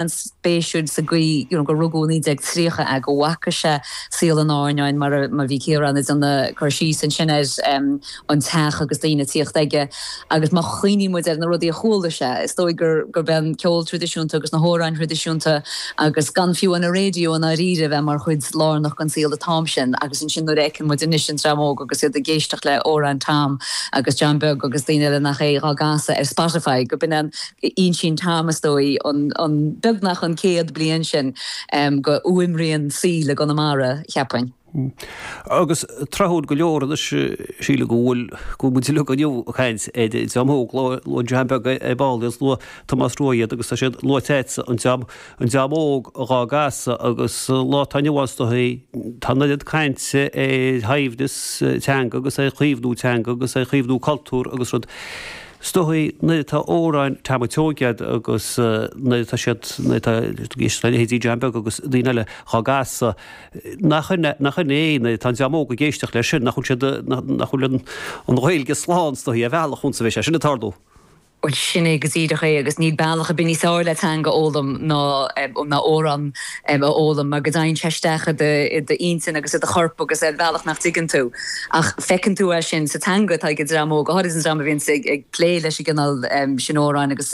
an-spéisiúil sa gcaoi you know gur rugadh i 1930 agus go bhfaca sé saol an áirneáin mar a mar bhí Ciarán ag déanamh cur síos ansin air em an teach agus daoine ag tíocht chuige agus má chuimhníonn muid ar na rudaí a chuala sé is dóigh gur gurb é an ceol traidisiúnta agus na hamhráin thraidisiúnta agus gan fiú an raidió i ndáiríre a bheith mar chuid lárnach den saol an t-am sin agus ansin nuair a fheiceann muid anois an dream óg agus iad ag éisteacht le amhráin Tom agus John Beag agus daoine eile nach é á gcasadh ar Spotify gurb in é an Insíonn Tom, is dóigh, an beagnach an céad bliain sin dhe fhuaimrian saoil i gConamara, cheapfainn. Agus tráthúil go leor anois, sílim go bhfuil go bhfuil muid le dhul inniu ag caint ar an dream óg luaigh John Beag ar ball is luaigh Tomás Rua iad agus tá siad luaite agatsa an dream an dream óg dhá gcasadh agus lá tá inniu ann is dóigh tá an oiread cainte ar shaibhreas teanga agus ar chaomhnú teanga agus ar chaomhnú cultúr agus rud 'S dóigh nuair atá amhráin Tom ansiúd agat agus nuair atá siad, nuair atá, know, tá leithéidí John Beag agus daoine eile dhá gcasadh, nach, nach in é, nuair atá an dream óg ag éisteacht leis sin, nach bhfuil siad, nach bhfuil an, an Ghaeilge slán 's dóigh, ar bhealach a fhad is a bheas sé sin ag tarlú. Bhuel, sin é go díreach é agus níl bealach ar bith níos fearr le teanga a fhoghlaim ná, ná amhrán a fhoghlaim mar go dteigheann sé isteach i d'intinn agus i do chorp ar bhealach nach dtuigeann tú ach feiceann tú é sin sa teanga atá ag an dream óg, go háirid an dream a bhíonns ag plé leis an gcineál sin amhráin agus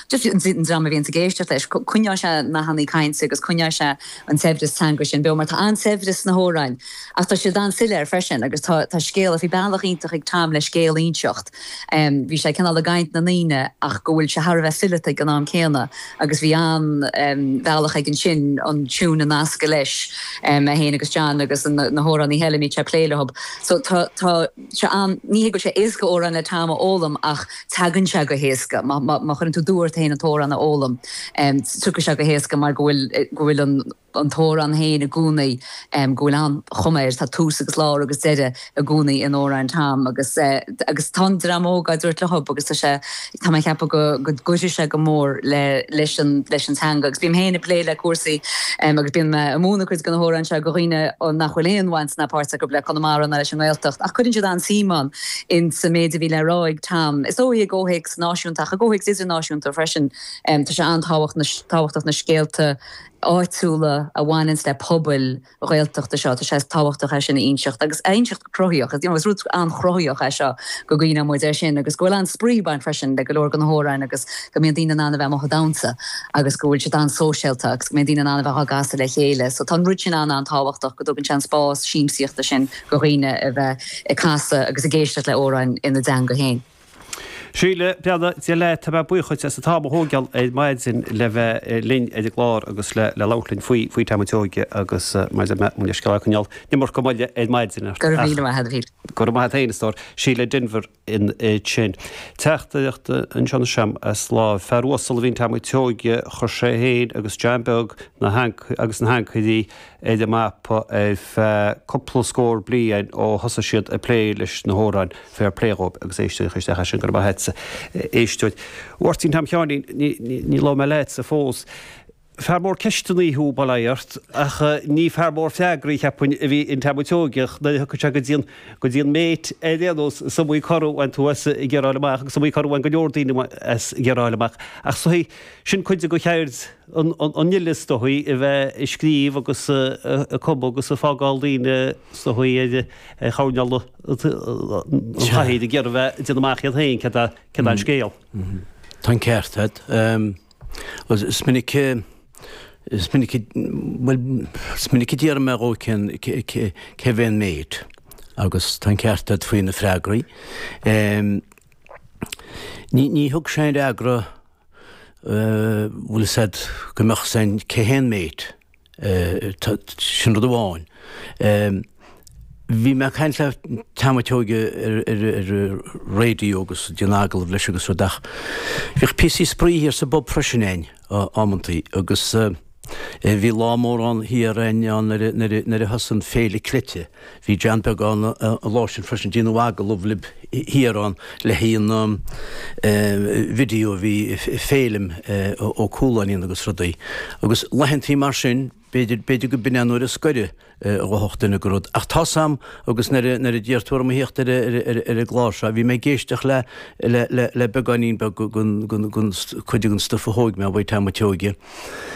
just an dream a bhíonns ag éisteacht leis. Coinneoidh sé nathannaí cainte agus coinneoidh sé an saibhreas teanga sin beo mar tá an-saibhreas sna hamhráin ach tá siad an-soiléir freisin agus tá scéal, bhí bealach iontach ag Tom le scéal a inseacht. Bhí sé cineál i gcaint na ndaoine ach go bhfuil sé thar a bheith fileata ag an am céanna agus bhí an-bhealach aige ansin an tiúin a nascadh leis é féin agus John agus na hamhránaí eile a mbíodh sé ag plé leothub. So tá tá sé ann ní hé go bhfuil sé éasca amhráin le Tom a fhoghlaim ach teagann sé go héasca. Má chuireann tú d'ort féin an t-amhrán a fhoghlaim tiocfaidh sé go héasca mar go bhfuil go bhfuil an an t-amhrán féin i gcónaí, go bhfuil an-chuma air, tá tús agus lár agus deireadh i gcónaí in amhráin Tom agus agus tá an dream óg á dtabhairt leothub agus tá sé, tá mé ag ceapadh go go gcuirfidh sé go mór le leis an leis an teanga agus bím féin ag plé le cúrsaí agus bím ag múineadh cuid de na hamhráin seo go dhaoine nach bhfuil aon bhaint ná páirt acu le Conamara ná leis an nGaeltacht ach cuireann siad an-suim ann in sa méid a bhí le rá ag Tom. Is dóigh i gcomhthéacs náisiúnta ach i gcomhthéacs idirnáisiúnta freisin tá sé an-tábhachtach na scéalta a áitiúla a bhaineanns le pobail Ghaeltachta seo. Tá sé tábhachtach é sin a inseacht agus a inseacht go cruthaitheach. Is you know is rud an-chruthaitheach é seo go gcuimhneodh muid air sin agus go bhfuil an-spraoi ag baint freisin le go leor de na hamhráin agus go mbíonn daoine in ann a bheith amuigh ag damhsa agus go bhfuil siad an-sóisialta agus go mbíonn daoine in ann a bheith á gcasadh le chéile. So tá an rud sin an-an-tábhachtach go dtugann sé an spás siamsaíochta sin go dhaoine a bheith ag casadh agus ag éisteacht le amhráin ina dteanga féin. Síle beannacht Dé leat, tá mé buíoch dhuit as an t-am a thógáil ar maidin le bheith linn ar an gclár agus le labhairt linn faoi faoi Tom an tSeoige agus maidir le Muintir Scáil Chanáil nImirce moille ar maidin. Go raibh míle maith agat. Go raibh maith agat fhéin a stór. Síle Denvir ansin. Teachtaireacht anseo anois a'm as láimh fear uasal a bhí in Tom an tSeoige, chuir sé fhéin agus John Beag na agus na hAncairí ar an mapa ar feadh cúpla scór bliain ó thosaigh siad ag plé leis na hamhráin, fair play dhóibh agus éisteoidh isteach ar sin, go raibh maith a't, a éisteoir. Mháirtín Tom Sheáinín, níor labhair mé leatsa fós. Fear mór ceisteannaí thú, bail ó Dhia ort, ach ní fear mór freagraí, cheapfainn, a bhí in Tom an tSeoigeach, nuair a thiocfadh sé go dtí'n, go dtí'n mate, ar aon nós, is iomaí cor a bhain tú as ag iarraidh fáil amach, agus is iomaí cor a bhain go leor daoine as ag iarraidh fáil amach, ach 's é sin cuid de cheird, an fhile is dóigh a bheith ag scríobh agus ag cumadh agus ag fágáil daoine is dóigh ar choirnéal an chathaoir ag iarraidh a bheith ag déanamh amach iad féin céard é an scéal. Tá an ceart agat. Is minic is minic bhuel is minic a d'iarr mé dhó cén cérbh é an mate agus tá an ceart agat faoi na freagraí. Ní thug sé aon fhreagra bhfuil a fhios a'd go mbeadh a fhios a'inn cé hé an mate, sin rud amháin. Bhí mé ag caint le Tom an tSeoige ar raidió agus ag déanamh agallamh leis agus rud ach bhíodh píosaí spraoi thiar sa bpub freisin a'inn, amantaí, agus. Bhí lá mór ann thiar a'inn ann nuair a, nuair a, nuair a thosaigh an Féile Cleite. Bhí John Beag ann an lá sin freisin. Déanadh agallamh lib thiar ann le haghaidh an eh, video a bhí Féilim eh, Ó Cualáin a dhéanamh agus rudaí. Agus laethantaí mar sin, b'fhéidir, b'fhéidir go b'in é an uair is gaire eh, a dtiocfadh duine go rud. Ach tá's a'm agus nuair a, nuair a d'iarr tú orm a thíocht ar, a- ar, a- ar, a- ar an gclár seo, bhí mé ag éisteacht le, le, le, le beagáinín beag gon, gon, gon, gon, cuid den stuff a thóig mé uaidh, Tom an tSeoige.